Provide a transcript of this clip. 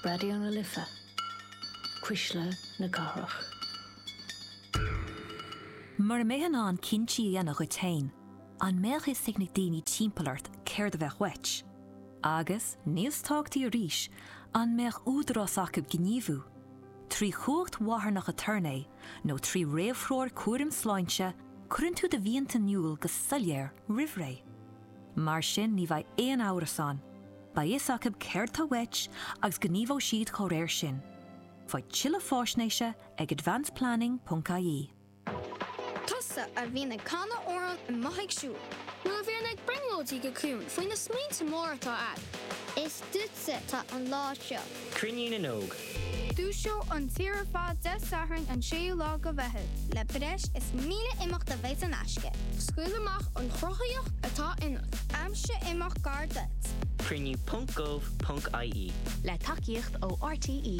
Raidió na Life, Cuisle na Cathrach. Mura mbeifeá in ann cinntí a dhéanamh dhuit féin, an mbeadh a fhios ag na daoine timpeall ort céard a bheadh uait? Agus, níos tábhachtaí arís, an mbeadh údarás acu gníomhú? Trí chumhacht mharthanach aturnae nó trí réamhthreoir cúraim sláinte, cuireann tú do mhianta in iúl go soiléir roimhré. Mar sin ní bheidh aon amhras ann, beidh a fhios acu céard tá uait agus gníomhóidh siad dá réir sin. Faigh tuilleadh fáisnéise ag advanceplanning.ie. Tusa a bhíonn ag canadh amhráin is tú amuigh ag siúl. Nó a bhíonn ag brionglóidigh go ciúin faoi na smaointe móra atá agat. Is duitse atá an lá seo. Cruinniú na nÓg. Ar fud na tíre ar fad Dé Sathairn an 6ú lá de Mheitheamh. le breis is 1,000 imeacht a bheidh in aisce. Scaoil amach an chruthaitheacht atá ionat. Aimsigh imeacht gar duit. Cruinniú ponc gov ponc ie. Le tacaíocht ó RTÉ.